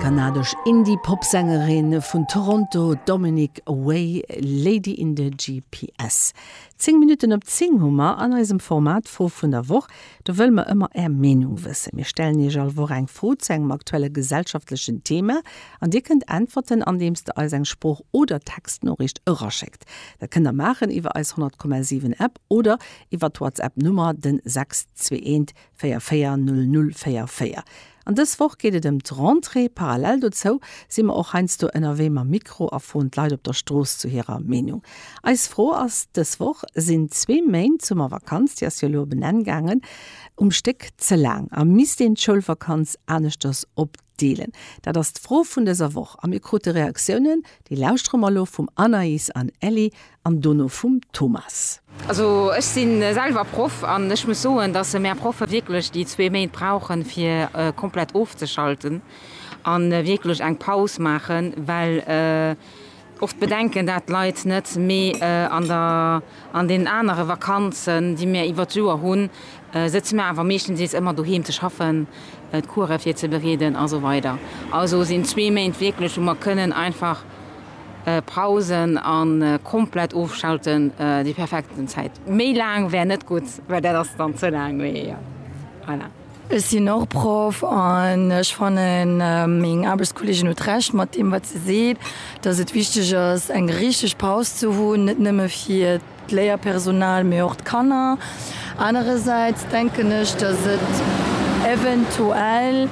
D'kanadesch Indie-Pop-Sängerin vun Toronto, d'Dominic Way, Lady in the GPS. Zéng Minutten op zéng hu mer an eisem Format Fro vun der Woch. Do wëlle mer ëmmer Är Meenung wëssen. Mir stellen Iech all Woch eng Fro zu engem aktuelle gesellschaftlechen Thema an Dir kënnt äntwerten, andeems Der eis eng Sprooch oder Textnoriicht eraschéckt. Dat kënnt Der maachen iwwer eis 100,7 App oder iwwer d'Whatsapp Nummer den 621 Véier, véier, null, null, véier, véier. An dës Woch geet et ëm d'Rentrée. Parallel dozou si mer och heiansdo ënnerwee mam Mikro a froen d'Leit op der Strooss zu hirer Meenung. Eis Fro ass dës Woch, Sinn zwee Méint Summervakanz, déi ass jo elo op en Enn gaangen, um Stéck ze laang a misst een d'Schoulvakanz aneschters op Deelen? Dat ass d'Fro vun dëser Woch a mir krute Reaktiounen. Déi lauschtere mer elo vum Anaïs an Ellie an dono vum Thomas. Also ech si selwer Proff an ech muss soen, dass mär Proffe wierklech déi zwee Méint brauchen, fir komplett ofzeschalten a wierklech eng Paus maachen, well Och d'Bedenken, dat d'Leit net méi an den anere Vakanzen, déi mir iwwert d'Joer hunn, sëtze mir awer meeschtendeels ëmmer doheem ze schaffen, d'Coure virzebereeden a sou weider. Also sinn zwee Méint wierklech, wou mer kënnen einfach pausen a komplett ofschalten, déi perfekten Zäit. Méi laang wär net gutt, well dat ass dann ze laang. Mee voilà. Ech sinn och Proff an ech fannen, meng Aarbechtskolleegin huet Recht mat deem, wat se seet, dass et wichteg ass, eng richtig Paus ze hunn, net nëmme fir d'Léierpersonal, mee och d'Kanner. Anerersäits denken ech, dass et eventuell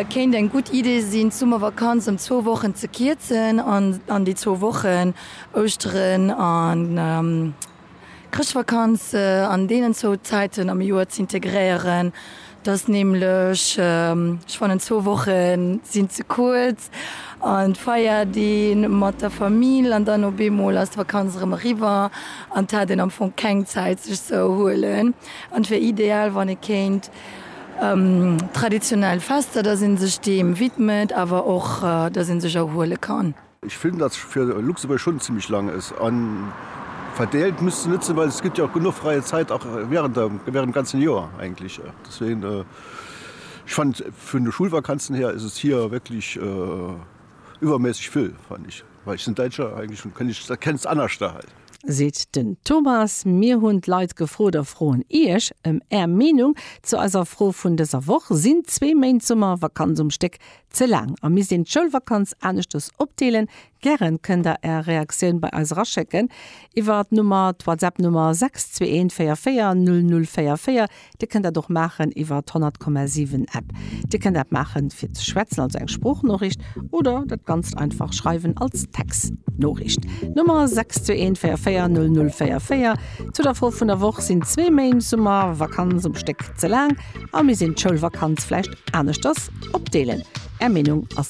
kéint eng gutt Idee sinn, d'Summervakanz ëm zwou Wochen ze kierzen an an déi zwou Wochen, Ouschteren an Chrëschtvakanz an deenen zwou Zäiten am Joer z'integréieren, dat ass nämlech, ech fannen zwou Woche sinn ze kuerz, an d'feiert ee mat der Famill an dann op eemol ass d'Vakanz erëm eriwwer an et hat een am Fong keng Zäit sech ze erhuelen. An et wier ideal wann ee kéint traditionell Fester, datt ee sech deem widmet awer och datt ee sech erhuele kann. Ech finn dat fir Luxemburg schon zimlech lang es an verdeelt misst net sin, well es gett jo och genuch freie Zait och während der während dem ganzen Joer eigentlech. Deswegen ech fannen et vun de Schulvakanzen her es hier wierklech iwwermässeg vill fannen ech, well ech sin Daitscher eigentlech an kenn ech kenn et anerscht da hei. Seet den Thomas. Mir hun d'Leit gefrot a froen Iech em är Meenung zu eiser Fro vun dëser Woch, Sin zwee Méint Summervakanz um Stéck Ze laang a misst een d'Schoulvakanz aneschters opdeelen? Gären kënn der Är Reaktioun bei eis eraschécken iwwer d'Nummer, d'Whatsapp-Nummer 621440044. Dir kënnt dat och maachen iwwer d'100,7 App. Dir kënnt dat maache fir ze schwätzen, also eng Sproochnoriicht, oder dat Ganzt einfach schreiwen als Textnoriicht. Nummer 621440044. Zu der Fro vun der Woch, Sinn zwee Méint Summervakanz um Stéck ze laang? A mir sinn d'Schoulvakanz vläicht aneschters opdeelen. Är Meenung ass.